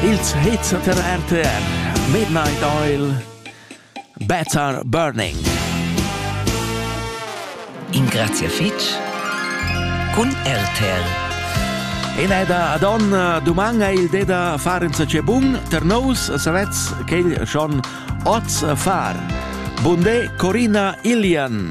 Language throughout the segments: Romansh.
Ils hits da RTR Midnight Oil Better Burning Ingrazia fitg cun RTR Ina da Adon duman è il de da far insacé bun ter nous savets quel schon oz far Bunde Corina Ilian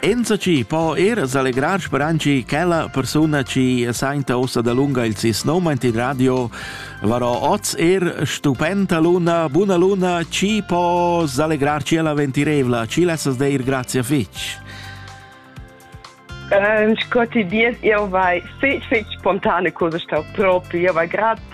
Enzatgi po er selegrar speranci quella persuna chi sainta ossa da lunga il sis nomaint in radio varò oz er stupenda luna, buna luna, ci po selegrar ci la ventirevla, ci lessas deir grazie fitch. Äh, in scotti dies, io vai fitch fitch spontane cose sta proprio, io vai grad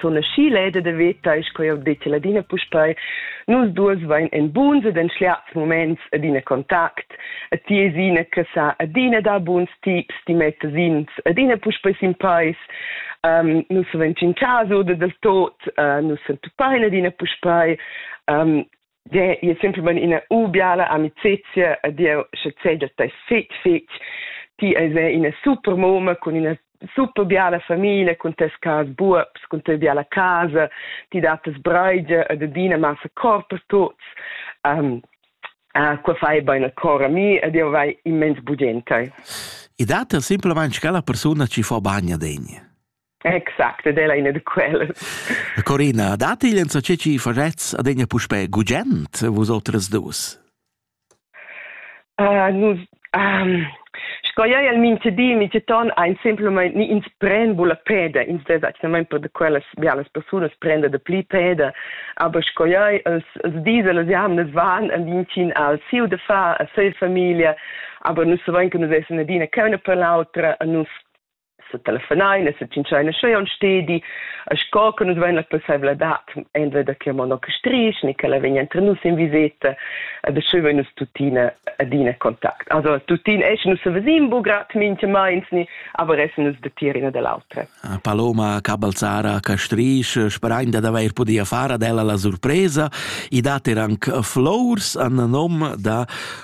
sun aschi leda da vetar, sco jau detti ladina puspei, nus duas vain en buns ed en schliats moments adina contact, a ti es ina che sa adina da buns tips, ti mettas ins adina puspei sin peis, um, nus savens in caso da del tot, uh, nus sentupain adina puspei, um, de je semplicemente una ubiala amicizia a Dio che cede te fitch fitch ti es una super moma con una super biala famiglia con tes cas buops con tes biala casa ti dat tes breide e de dina massa cor per tots um, Ah, qua fai bene cor a mi ed io vai immens budente. I dat er simpelmente che la persona ci fa bagna degna. Exact, ed ella ina da quellas. Corina, dat igl enzatge ci farets ad egna puspe gugent, vus otras dus? Uh, nus, um, sco ei el minte di, minte ton, ein semplamain ni ins pren bula peda, ins des actualmente per de quellas bialas personas prende de pli peda, aber sco ei els, els diesel els jamnes van el vincin al siu de fa a sei familia, aber nus savein che nus essen adina cauna per l'autra, a nus se telefonain e se tschintschain scheu on stedi a sco che nus vein la possibilitad entweder da che mono che strich ni che la vegn entre nus in viseta e da scheu vein nus tuttina adina contact also tuttina es nus se vesim bu grad minche meins ni aber es nus de tier ina dell'altra ah, Paloma Cabalzara Castrisch sperain da d'aver podia far ad ella la surpresa i dat er anc flors an nom da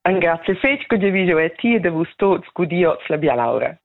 Engrazia fetg che jeu vi jeu e ti e da vus tuts gudiots la bialaura.